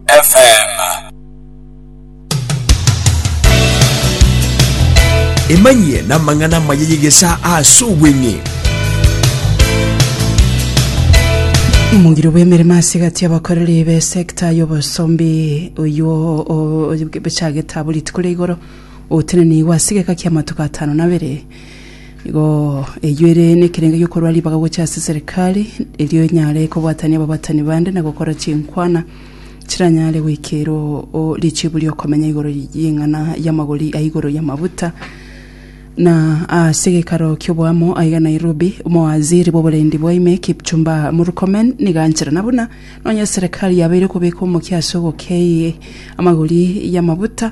FM. Emanyie na amang'ana amaya y'egesaa ase obweng'e. Omogiro bw'emeremo ase egati y'abakoreri be secta y'obosombi oywo o- o- bechagete abo rituko ria igoro otenenigwe ase egeka ki'amatuko atano na abere Nigo eyio ere nekerengo gi'okorua ribaga gochia ase Serikali, erio enyare kobwatania ababatani bande na gokora chinkwana chiranyare goikerwa o richibu ri'okomenya igoro y'eng'ana y'amagori a igoro y'amabuta. Na ase gekaro ki'oboamo aiga Nairobi, Omowaziri bw'oborendi bwa ime Kipchumba Murkomen nigo ancherana buna nonye Serikali yabeire kobeka omokia ase ogokei amagori y'amabuta,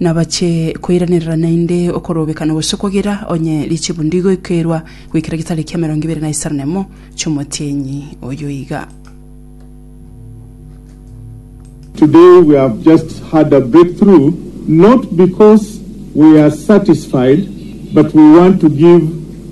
nabache koiranerera naende okorobekana gose okogera onye richibu ndigoikerwa goikera getariki emerongo ebere na isano nemo chi'omotienyi oyo iga. Today we have just had a breakthrough not because we are satisfied but we want to give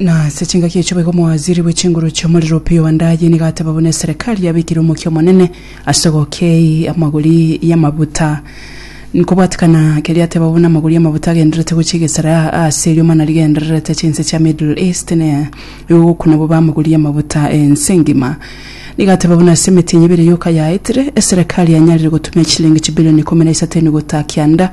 Na ase chingaki echio boigo omowaziri bwe chinguru chi'omorero Opiyo Wandayi nigo ateba buna eserekari yabekire omokia omonene ase ogokei amagori y'amabuta. Nkobwatikana keria ateba buna amagori y'amabuta agendererete gochia egesara aase eriomo nario gendererete chinse chia Middle East na igo gokuna bobe amagori y'amabuta ense engima. Nigo ateba buna ase emetĩnyi ebere yoka yaetire, eserekari yanyarire gotumia chilingi chibilioni ikomi na isato eniguta kianda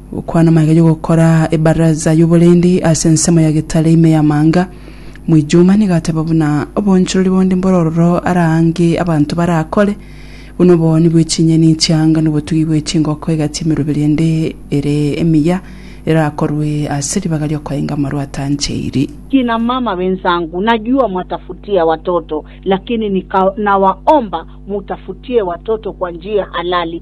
Gokwana maiga y'ogokora ebaraza y'oborendi ase ensemo ya getare ime y'amanga. Mwijuma nigo ateba buna oboonchorori bonde mbore ororo araange abanto barakore, buna obooni bwe chinyeni chi'anga n'obotugi bwe chingoko egati emeroberi ende ere emiya erakorwe ase ribaga ri'okoenga amarwa atancheiri. Kina mama wenzangu najua mwatafutia watoto lakini nikawa nawaomba mutafutie watoto kwa njia halali